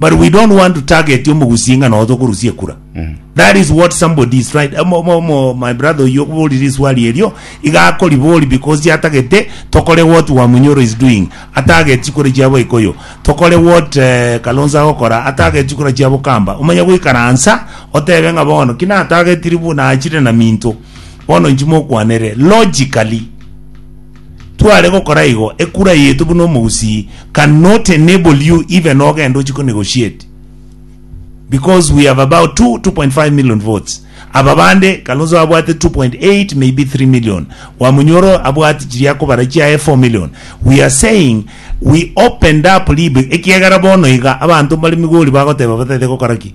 but we don't want to target omogusi ng'a noe tokorusia ekura that is what somebody is right Omo- omo- omo- my brother oyo oborire iswali erio iga akoribori because chiatagete tokore what wamunyoro is doing atagete chikura chiabo ikoyo tokore what eh, kalonzo agokora atagete chikura chiabo kamba omanye goikaransa otebe ng'a bono ki natagetiri buna achire na minto bono inchi mokwanere logically Tware gokora igo, ekura yaito buna omogusii can not enable you even ogenda ochie ko negotiate because we have about 2, 2.5 million votes. Aba bande Kalonzo abwate 2.8 maybe 3 million. Wamunyoro abwate chiria akobara chiaye 4 million. We are saying we opened up libe ekiagera bono iga abanto mbare Migori bagoteba batete gokora ki?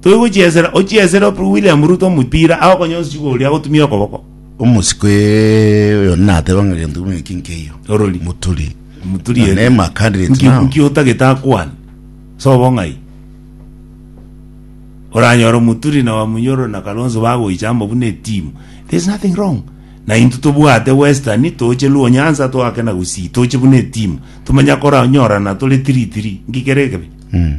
Toigochiesera ochiesere ope William Ruto omopira aye okonye osisigo oria agotumia okoboko. Omosiko ee, oyo nateba ng'a gento kimwe eki nkeiyo. Orori. Muturi. Muturi Na ere. name a candidate Nki- now. nki otagete akwane sobo ng'ai oranyora omuturi na wamunyoro na kalonzo bagoichamba buna etimu there's nothing wrong na intwe tobwate western toche luo nyanza toake na gusii toche buna etimu tomanya koranyorana tore tiri tiri nki kere ekebe Mm.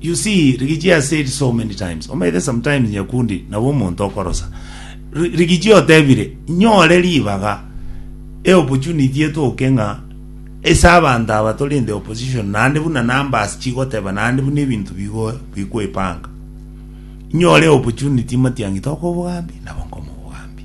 You see, Rigiji has said so many times, omanyete sometimes Nyakundi nabo omonto okorosa. Ri- Rigiji otebire, nyore ribaga, e opportunity etoke ng'a ase abanto aba tore in the opposition, naende buna numbers chigoteba, naende buna ebinto bigo bikwepanga. Nyore opportunity Matiang'i tokobogambi, nabo nkomobogambi.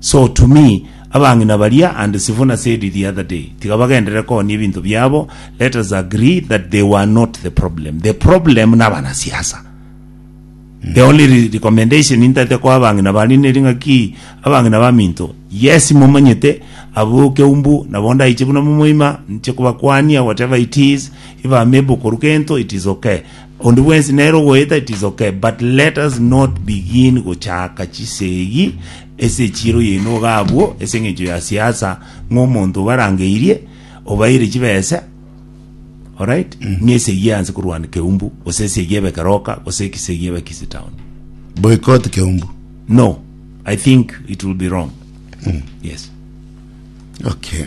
So to me, abang'ina baria and Sifuna said it the other day, tiga bagenderere koonia ebinto biabo, let us agree that they were not the problem. The problem nabanasiasa. The only re- recommendation intagete koa abang'ina baria neri ng'aki abang'ina baminto yes momanyete abwo keumbu nabo ndaiche buna momoima nche kobakwania whatever it is if I'm able koru gento it is okay Onde bwensi nere ogoeta it is ok but let us not begin gochaaka chisegi ase echiiro yaino iga abwo ase engencho ya siasa ng'a omonto obarangeirie obaeire chibesa alright ng'a esegi eanse korwana keumbu gose esegi ebe keroka gose ekisegi ebe kisi town Boycott Keumbu. no i think it will be wrong yes Okay.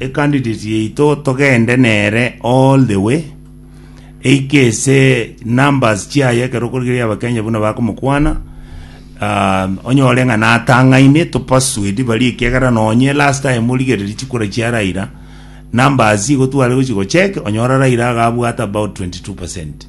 ecandidate yaito togende nere all the way eike ase numbers chiaye ekero okorigereria abakenya buna bakomokwana ah, onyore ng'a natang'aine topasuedi barie ekiagera nonye last time origereria chikura chia raira numbers igo tware gochi gochek onyora raira agabwate about 22 percent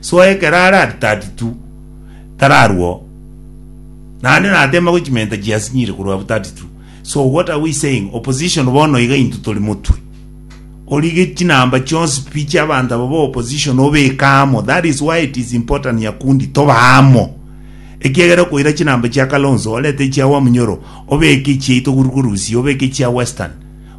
Soa ekero are at 32 tararwao, naende nateemagwe chimenta chiasinyire korwa abwo 32 so what are we saying opposition bono iga intwe tori motwe orige chinamba chionsi pi chiabanto aba ba opposition obeke amo that is why it is important Nyakundi tobe amo ekiagera okoira chinamba chia Kalonzo orete echia Wamunyoro obeke echiaito korwa Urusi obeke echia Western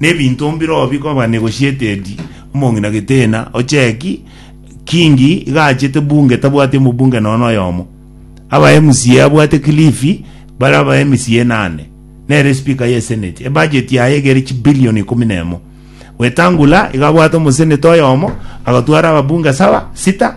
Nebinto mbirobio bikoba negotiated omong'ina gitena ocheki kingi iga achete bunge tabwati omobunge nono oyomo aba MCA abwate kilifi bare aba MCA nane nere speaker ye senate ebudget yaye egere chibillion ikomi nemo wetangula iga abwate omoseneta oyomo agatwara ababunge saba sita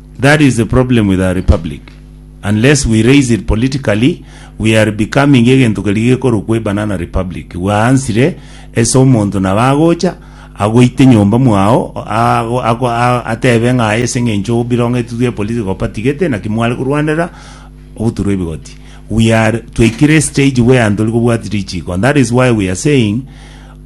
That is the problem with our republic, unless we raise it politically, we are becoming egento keria gekorokwa a banana republic, bwaansire ase omonto nabo agocha agoite nyomba mwao ago ago atebe ng'a aye ase eng'encho birongetwe twe political party gete naki mware korwanera ogoturwa ebigoti. We are twaikire stage where ntori kobwati richiko and that is why we are saying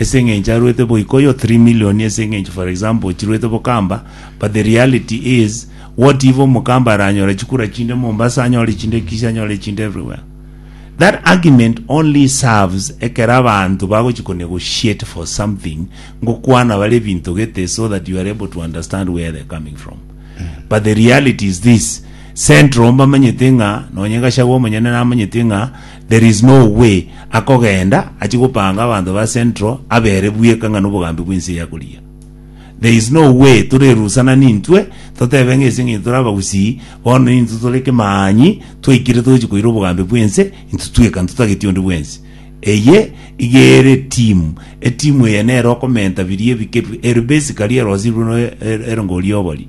ase engencho arwete boika oyo 3 million ase engencho for example chirwete bokamba but the reality is what if omokamba aranyore chikura chinde Mombasa anyore chinde Kisii anyore chinde everywhere that argument only serves ekero abanto bagochi ko negotiate for something ngokwana bare ebinto gete so that you are able to understand where they're coming from but the reality is this central mbamanyete ng'a nonye gachagua omonyene namanyete ng'a There is no way akogenda achie gopanga abanto ba central abere bweka ng'a nobogambi bwense eye akorigia. There is no way torerusana nintwe totebe ng'a ase eng'encho tore abagusii bono nintwe tore kemaanyi twaikire togochia koira obogambi bwense intwe tweka ntotageti onde bwensi. Eye iga ere eteam, eteam eye nere okomenta biria ebike bi ere basically ere osibwe no ere ngori obori.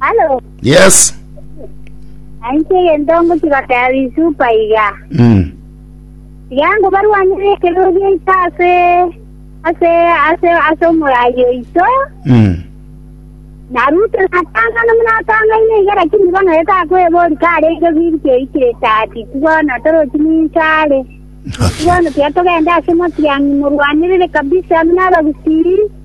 Halo, Yes. nainche egento ngochibakaya bisupa iga. Mm. Iga ngo barwanire ekero giaito ase ase ase ase omorayi oito. Mm. Na Ruto natangana munatangaine iga lakini bono etakwebori karenge biri keikire tati tibono torochi ninsare. Okay. Tibono tiatogenda ase motiang'i morwanirire kabisa muna abagusii.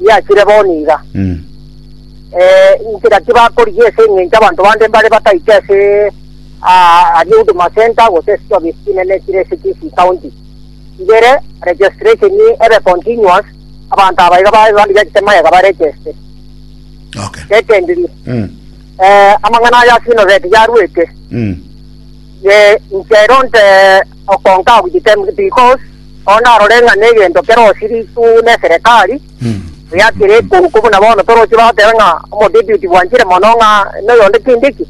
biachire bo niga. Eh, inche naki bakorigia ase eng'encho abanto bande mbare bataite ase ah, aria Huduma Center gose ase chiofisi chinene chire ase Kisii County. Ibere, registration ebe continuous, abanto aba iga babe bande giachete magega ba register. Okay. Secondly, Mm. eh, amang'ana aya ase university yarwete, Mm. eh, inche eronte Okonka ogochitemwa tikos, oo narore ng'a negento kero osirigwe neserekari, buya kere ekonko buna bono toroche bateba ng'a omodeduty bwanchire mono ng'a noyonde kende ki.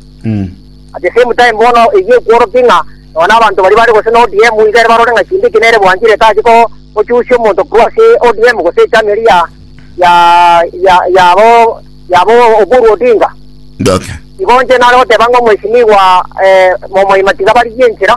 At the same time bono eyio ekworokia ng'a nonya nabanto baria bare gose na ODM iga ere barore ng'a kende ki nere bwanchire tache ko gochusia omonto korwa ase ODM gose echama eria ya ya ya yabo yabo Oburu Odinga. Okay. Igo inche nare goteba ng'a omwesimiwa eh, Momoima tiga barigie enchera.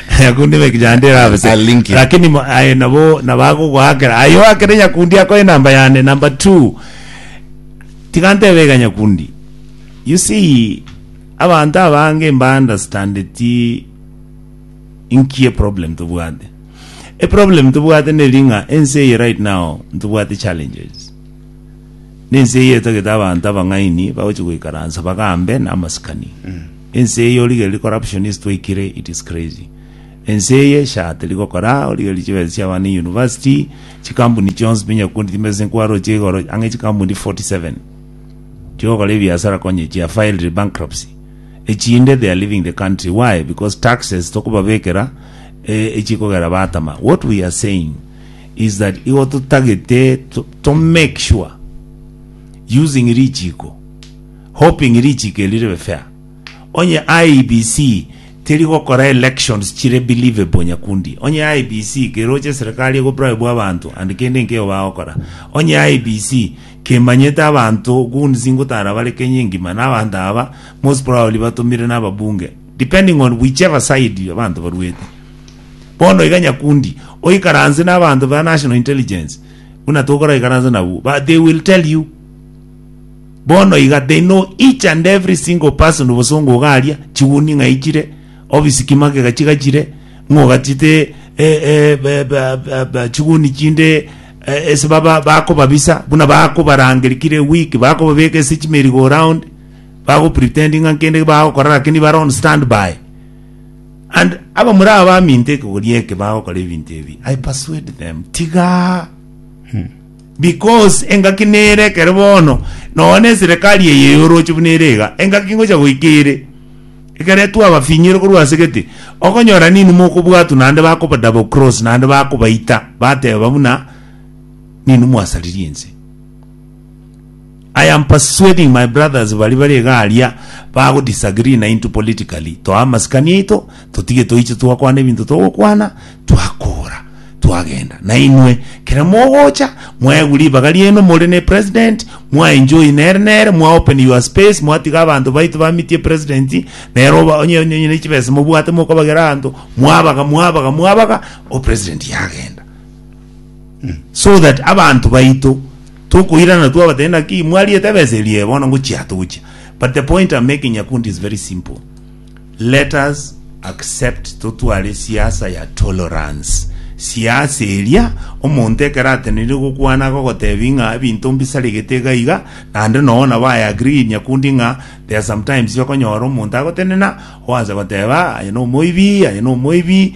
Nyakundi beki yande erabe se. A link. Lakini mo- aye nabo nabagogoakera. Aye oakere nyakundi akoe namba yane number 2. Tiga ntebe iga nyakundi. You see abanto abange mba understandeti inki e problem tobwate. E problem tobwate neri ng'a ense eye right now ntobwate challenges. Nense eye etagete abanto abang'aini bagochi goikaransa bagambe na amasikani. Ense eye origererie corruption ase twaikire it is crazy. Ense eye sha teri gokora origererie chibesa chia abana e university chikampuni chionsi pi nyakundi timbesa ase nkwaro chia igoro ang'e chikampuni 47 chia ogokora ebiasara konye chia filed bankruptcy echinde they are leaving the country why because taxes tokobabekera eh, echikogera batama what we are saying is that igo totagete to, to make sure using richiko Hoping richiiko eri ribe fair. Onye IEBC teri gokora elections chire believable nyakundi. Onye IEBC keroche eserekari ego bribe abanto and kende nkeo bagokora. Onye IEBC kemanyete abanto goons ngotara bare Kenya engima na abanto aba most probably batomire na ababunge depending on whichever side abanto baruete. Bono iga nyakundi oikaranse na abanto ba national intelligence buna tokoraikaransa nabwo but they will tell you Bono iga they know each and every single person obosongo ogaria chiguni ng'ai chire office ki magega chiga chire ng'ogachete eh, eh, ba- ba- ba- ba- chiguni chinde eh, ase baba bakobabisa buna bakobarangeri kire week bakobabeka ase chimerigo round bagopretend ng'a nkende bagokora lakini bare on standby and aba muri aba baminto ekegori eke bagokora ebinto ebi i persuade them tiga Because engaki nere ekero bono nonya na eserekari eye ya oroche buna ere iga, engaki ngocha goika ere, ekero etwa abafinyore korwa ase gete, okonyora ninwe mokobwatwa naende bakoba double cross naende bakobaita bateba buna ninwe mwasaririe ense. I am persuading my brothers baria bare iga aria bago disagree naintwe politically, toa amasikani aito, totige toiche twakwana ebinto togokwana, twakora, twagenda. Nainwe, kera mogocha, mwaegwa ribaga riaino more ne president, mwa enjoy nere nere, mwa open your space, mwatiga abanto baito bamitie president, nere oba onye onye ne chibesa mobwate mokobagera abanto, mwabaga, mwabaga, mwabaga, o president yagenda. so that abanto baito tokoirana twabatebia naki mwariete ebesa erie bono ngochia togochia but the point I'm making Nyakundi is very simple let us accept totware siasa ya tolerance siasa eria omonto ekero atenire gokwana gogotebi ng'a ebinto mbisaregete iga iga naende noo nabo I agree Nyakundi ng'a there are sometimes okonyora omonto agotenena oanse goteba aye na omoibi aye na omoibi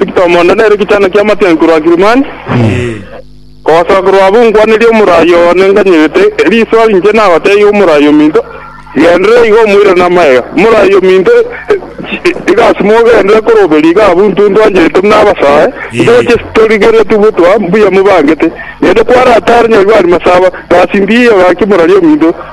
Eketomo onde nere egechaano ki'amatianki korwa Kilimani, kogosoa korwa abwo nkwanerie omorai oo nenganyerete, erio iso inche nagoteebia omorai ominto, Genderera iga omoire namagega. Omorai ominto, iga asime ogendere koroberio iga abwo intwe ntwancherete buna abasoe, ntoche torigereretie gotwa mbuya mobangete. Naende kware ase aare nyarwari masaba, gasi mbiya egaki morari ominto.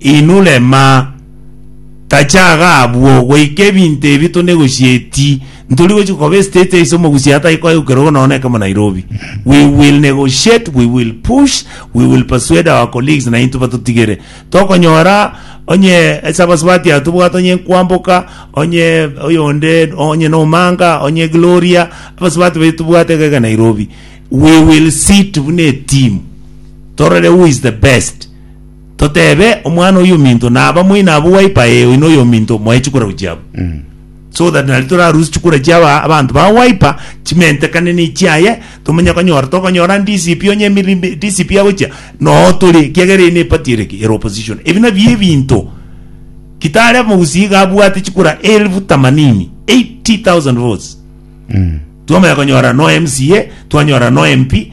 Inwe rema, tachaga abwo, goika ebinto ebi tonegochieti, ntori gochia koba estate ase omogusia atai koegukerogwa nonya na ekemo Nairobi. We will negotiate, we will push, we will persuade our colleagues na intwe batotigere. Tokonyora onye ase abasubati aba tobwate onye Nkwamboka, onye oyonde, onye na Omanga, onye Gloria, abasubati baito tobwate iga iga Nairobi. We will sit buna eteam, torore who is the best. toteebe omwana oyominto naba moino abwo waipa ee oino oyominto moe chikura gochia abwo Mm. so that nari torarusie chikura chia aba- abanto ba waipa chimentekane ne chiaye tomenye konyora tokonyora DCP onye emirimbe DCP agochia noo tore ekiagera eye ne party ere ki ere opposition ebi nabi ebinto Kitale omogusii iga abwate chikura elfu tamanini 80,000 votes Mm. twamanya konyora no MCA twanyora no MP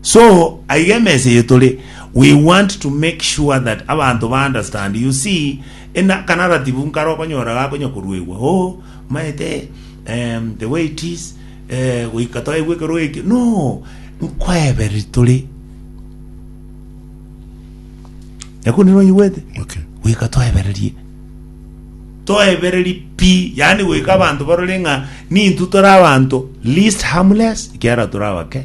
So aiga emesa eye tore we want to make sure that abanto ba understand you see in a kanaratibu nkare okonyora gakonya koruegwa oh maete um, the way it is eh, goika twaigwe ekero eke no nkoebere tore nyakundi nonyigwete Okay. goika twaebererie toebereri pi yani goika abanto barore ng'a nintu tore abanto least harmless kiara tore abake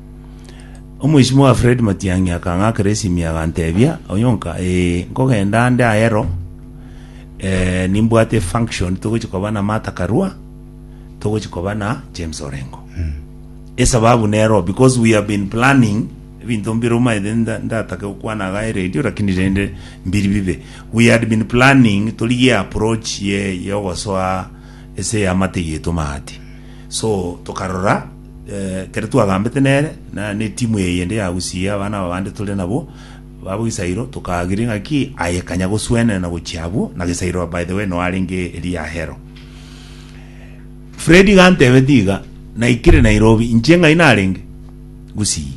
Omoisimo oye Fred Matiang'i akang'akera esimi aganteebia, Onyonka, ee, nkogenda ande ayero, eh, nimbwate efunction togochi koba na Martha Karua, togochi koba na James Orengo. Esababu nero because we have been planning ebinto mbire omanyete nda- ndatake gokwana iga eredio lakini rende mbiri bibe. We had been planning torigie approach ye yogosoa ase y'amate yaito maate. So tokarora eh, kere twagambete nere na netimu eye yende ya Gusii abana aba bande tore nabo babo Gisairo tokaagiri ng'aki aye kanya goswenera na gochia abwo na Gisairo by the way no arenge eri ya hero Fred gantebe tiga naikire Nairobi inche ng'ai narenge Gusii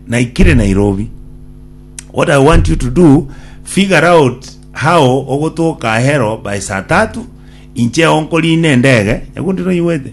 naikire Nairobi what I want you to do figure out how ogotoka hero by saa tatu inche onkorine ndege yakundi noigwete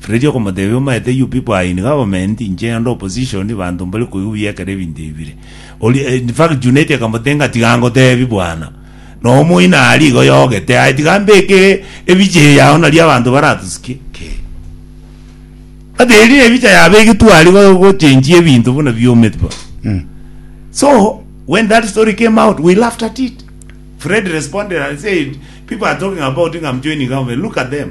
Fredy okomotebia, Omaete you people are in government, inche nde opposition, banto mbare koigwa ekero ebinto ebi bire. Oria, eh, in fact Junet akamotenga, tiga ngotebi bwana, na omoina aria iga oyogete aye, tiga mbeke ebicha eye yao naria abanto baratosikie. Kee. But eria ebicha yabegetwe aria go- gochenjia ebinto buna biomete bo. So when that story came out, we laughed at it. Fred responded and said, "People are talking about I'm joining government. Look at them.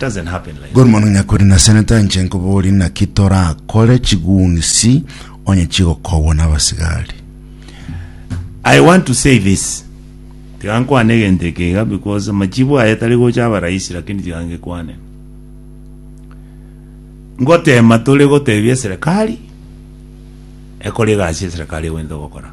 Doesn't happen like Good morning nyakuri na seneta inche nkobori naki torakore chigunisi onye chigokobwa nabasigari I want to say this tiga nkwane egento eke iga because amachibu aye tari gocha aba rahisi lakini tiga ngekwane ngotema tore gotebia serikali ekore egasi ya serikali egwente gokora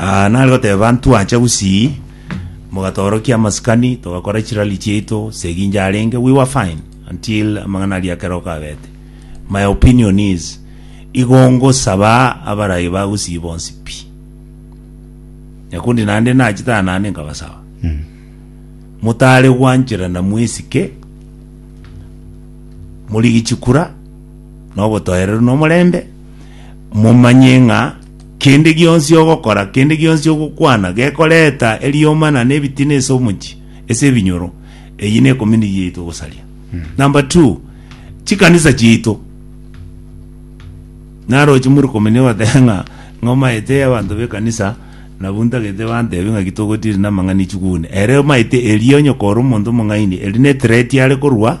Aa, nare goteba, Ntwacha gusii, mogatoorokia amasikani, togakora chirali chiaito, Seginja arenge, we were fine, until amang'ana aria ekero gabete. My opinion is, igo ngosaba abarai ba gusii bonsi pi. Nyakundi naende nachete aa naende nkabasaba. Motare gwancherana mwesike, morigie chikura, na obotoereru na omorembe, momanye ng'a Kende gionsi ogokora, kende gionsi ogokwana, gekoreta erioma na nebitina ase omochie, ase ebinyoro, eyio ne community yaito gosaria. Number two, chikanisa chiaito naroche muri komini goteba ng'a ng'a omaete abanto b'ekanisa nabwo ntagete bantebe ng'aki togotiri namang'ana echugune ere omaete erio onye kore omonto omong'aini eri ne threat are korwa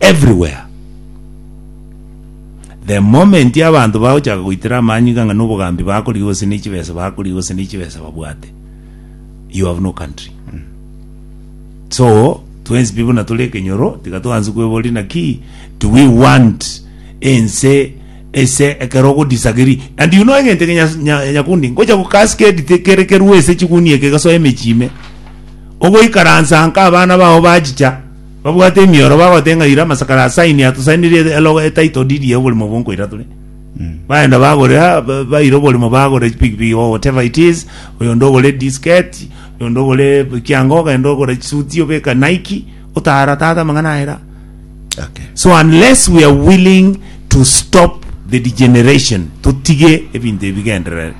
everywhere the moment abantu bagochaka goitera amanyu iga ng'a nobogambi bakorigia gose ne chibesa bakorigia gose ne chibesa babwate you have no country so twensi pi buna tore ekenyoro tiga twansi kweboria naki do we want ense ese ekero ogodisagiri and you know egento eke Nyas- Nya- nyakundi ngocha gokascade te- kere kerue ese chigunia eke gasoa emechime ogoikaransa nka abana bao bachicha Babwate emioro, bagote ng'a ira amasakara asaini atosainirie elogo e title deed ya oborimo obwo nkoira tore. Bagenda bagore, ah, ba- baira oborimo bagore chipikipiki or whatever it is, oyonde ogore disket, oyonde ogore kianga ogenda ogore chisuti obeka Nike, otara tata amang'ana ayera. Okay. So unless we are willing to stop the degeneration, totige ebinto ebi bigenderere.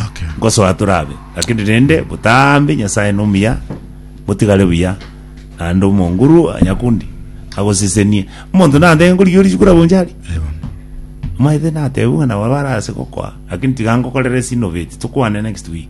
Okay. Ngosoa torabe. Lakini rende botambe Nyasaye nomuya Motigare buya, naende omonguru o nyakundi agosesenie. Omonto natenge nkorigia orisiku rabonche aria, Eaba. omaete natebiwe ng'a nabo abare ase gokoa, lakini tiga nkokorere ase innovate, tokwane next week.